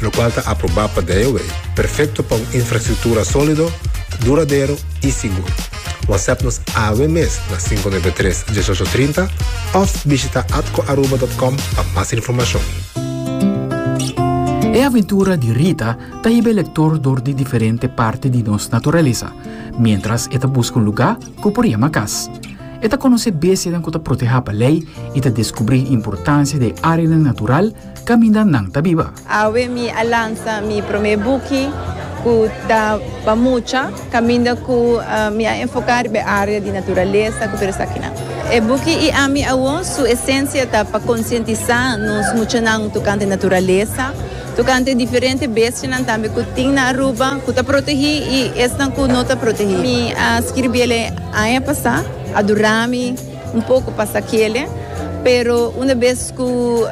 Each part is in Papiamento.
lokual ta aprobá pa DIOA, perfekto pa un infrastruktura sólido, duradero i sigur. Whatsapp nos awe mes na sinku nuebe tres, dieshocho trinta òf bishitá atcoaruba dòt com pa mas informashon. E aventura di Rita ta hiba e lektor dor di diferente parti di nos naturalesa, miéntras e ta buska un lugá ku por yama kas. E ta konosé bestianan ku ta protehá pa lei i ta deskubrí importansia di e áreanan natural caminda nan ta biba. Awe mi a lansa mi prome buki cu ta pa mucha, caminda cu mi a enfoca riba e area di naturalesa cu tur esakinan. E buki I ami awor su esencia ta pa concientisa nos muchanan tocante naturalesa, tocante diferente bestianan tambe cu tin na Aruba cu ta protegi y esnan cu no ta protegi. Mi a scribiel e aña pasa, a dura mi. Un poco pasa kele, pero una bes cu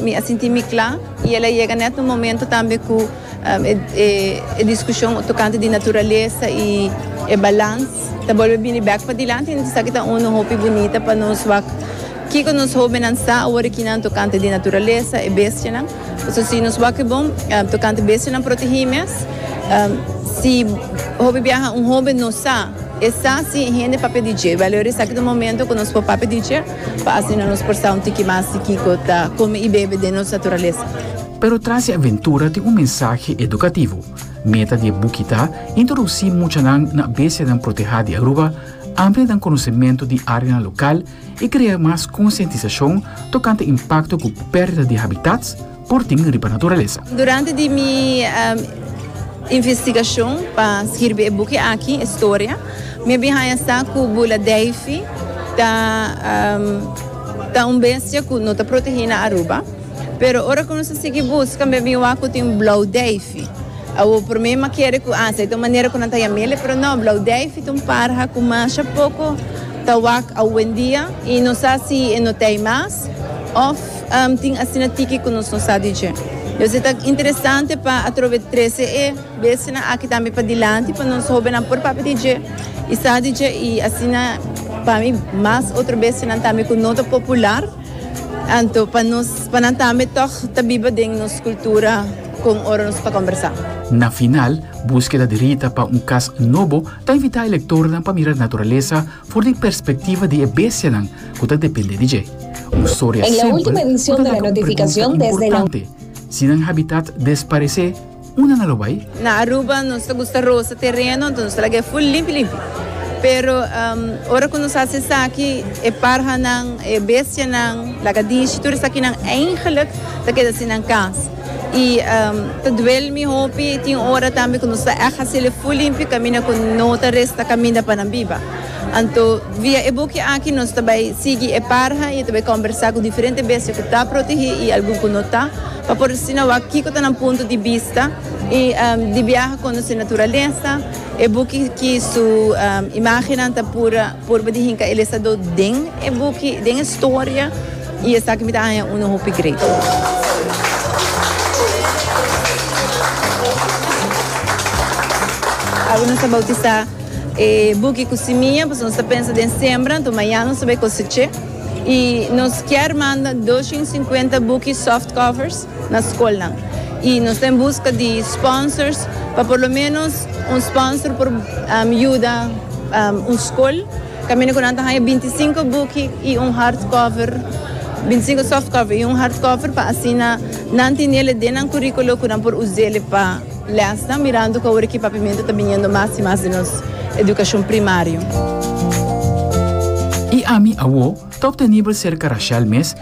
mi a sinti mi cla y el a yega net un momento tambe cu e discusion tocante di naturalesa y e balans ta bolbe bini bek padilanti y esaki ta un hopi bunita pa nos wak kico nos hobennan sa awor aki nan tocante di naturalesa, e bestianan. Pasobra si nos wak bon tokante bestianan protegí mes, si hopi biaha un hóben no sa, e sa si e hende papia di dje. Bèl oir esaki ta un momentu ku nos por papia di dje, pa asina nos por sa un tiki mas di kiko ta kome i bebe den nos naturalesa. Pero tras e aventura tin un mensahe edukativo. Meta di e buki ta introducí muchanan na bestianan protehá di Aruba, amplianan konosementu di áreanan lokal i krea mas konsientisashon tokante impakto ku pèrdida di habitats por tin riba naturalesa. Durante di mi investigashon pa skirbi e buki aki, e storia, mi a bin haña sa ku Bula Davey ta ta un bestia ku no ta protegí na Aruba. Pero ora ku nos a sigui buska mi a bin wak ku tin Blou Davey. Awor por mi mi a kere ku, ah, esei ta un manera ku nan ta yam'el, pero no, Blou Davey ta un parha ku masha poko. Ta wak awendia y no sa si e no t'ey mas of tin asina tiki cu nos no sa di dje. Entonces ta interesante pa atrobe trece e bestianan aki tambe padilanti pa nos hobennan por papia di dje y sa di dje y asina pa mi mas otro bestianan tambe cu no ta popular anto pa nos pa nan tambe toch ta biba den nos cultura con ora nos ta combersa. Na final, búskeda di Rita pa un cas nobo ta invitá e lektornan pa mira naturalesa for di perspektiva di e bestianan ku ta dependé di dje. Un storia simpel ku ta laga un pregunta importante, Si nan habitat desparesé, unda nan lo bai? Na Aruba nos ta gusta rosa tereno, anto nos ta laga e ful limpi limpi. Pero ora ku nos hasi esaki, e parhanan, e bestianan, lagadishi, tur esakinan eigenlijk ta keda sin nan kas. Y ta duel mi hopi, tin ora tambe cu nos ta echt haciele full limpi caminda cu no ta resta caminda pa nan biba. Anto via e buki aki nos ta bay sigui e parha y e ta bay combersa cu diferente bestia cu ta protege y algun cu no ta, pa por asina wak kico ta nan punto di bista y di biaha conoce naturalesa. E buki ki su imagennan ta pura. Purba di hinca el esta do den e buki, den e storia, y esaki mi ta haña uno hopi great. Awe nos ta bautisa e buki cu simia, pasobra nos ta pensa den sembra, anto mañana nos ta bay coseche, y nos kier manda dos shin cincuenta buki softcovers. na skolnan y nos ta en busca di sponsors pa por lo menos un sponsor por yuda un skol caminda cu nan ta haya binti sinku buki y un hard cover binti sinku soft cover y un hard cover pa asina nan tenele den nan curiculo cu nan por usele pa lesnan mirando cu awor e kipapimento ta biniendo mas y mas den nos educacion primario. Y ami awo ta obtenibel serca Rashel mes